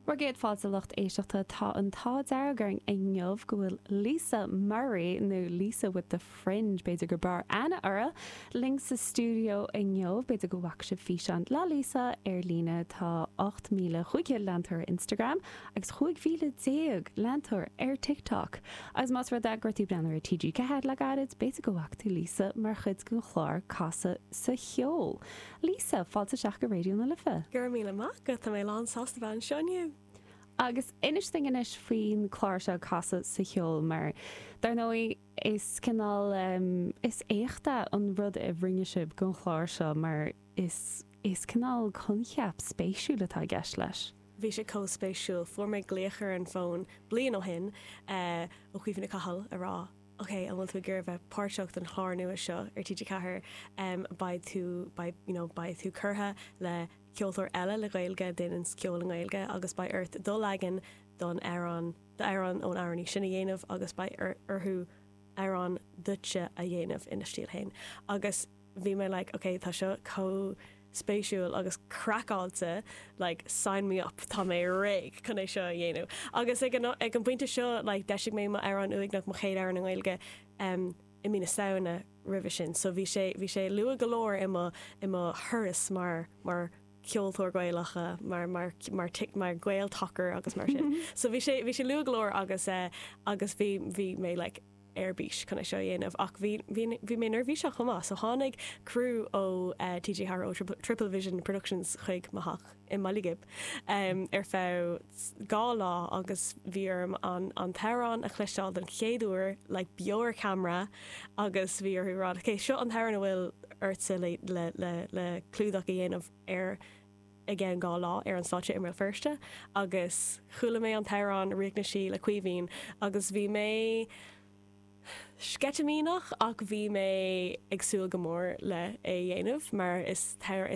Bhur gcéad fáilte a lucht éisteachta, tá an t-ádh dearg orainn inniu go bhfuil Lisa Murray, nó Lisa with the Fringe, b'fhéidir gur fearr aithne uirthi, linn sa stiúideo inniu. B'fhéidir go bhfaca sibh físeán le Lisa ar líne, tá 8,500 leantóir ar Instagram agus 15,000 leantóir ar TikTok. Agus más rud é go raibh tú ag breathnú ar TG4 le gairid, b'fhéidir go bhfaca tú Lisa mar chuid den chlár Casadh sa Cheol. Lisa, fáilte isteach go Raidió na Life. Go raibh míle maith agat, tá mé lán sásta bheith anseo inniu. Agus inis dúinn anois faoin clár seo Casadh sa Cheol mar dar ndóigh is cineál ehm is éachtach an rud a rinne sibh gon chlár seo mar is is cineál coincheap spéisiúil atá i gceist leis. Bhí sé comh spéisiúil, fuair mé glaoch ar an bhfón bliain ó shin eh ó Chaoimhe Ní Chathail a rá ok, an bhfuil tú ag iarraidh bheith páirteach sa chlár nua seo ar TG4? em beidh tú beidh you know beidh tú curtha le ceoltóir eile le Gaeilge a déananns ceol i nGaeilge agus beidh ort do leagan don amhrán do amhrán ón amhránaí sin a dhéanamh agus beidh orthu amhrán duitse a dhéanamh ina stíl féin agus bhí mé like ok tá seo chomh spéisiúil agus craiceáilte like sign me up tá mé réidh chun é seo a dhéanamh agus ag an ag an bpointe seo like d'eisigh mé m'amhrán Uaigneach mo chéad amhrán i nGaeilge em i mí na Samhna roimhe sin so bhí sé bhí sé luath go leor i mo i mo thuras mar mar ceoltóir Gaelach eh mar mar mar tic mar Gael tacair agus mar sin so bhí sé bhí sé luath go leor agus eh agus bhí bhí mé like ar bís chun é seo a dhéanamh ach bhí, bhí, bhí mé neirbhíseach chomh maith so tháinig crew ó TG4 ó Triplevision Productions chuig mo theach i mBaile Ghib ehm ar feadh dhá lá agus bhí orm an, an t-amhrán a chloisteáil don chéad uair like beo ar camera agus bhí orthu a rá ok seo an t-amhrán a bhfuil ortsa le, le, le, le clúdach a dhéanamh ar. i gceann dhá lá ar an stáitse i mBéal Feirste agus chuala mé an t-amhrán Ríocht na Sí le Caoimhín agus bhí mé sceitimíneach ach bhí mé ag súil go mór le é a dhéanamh mar is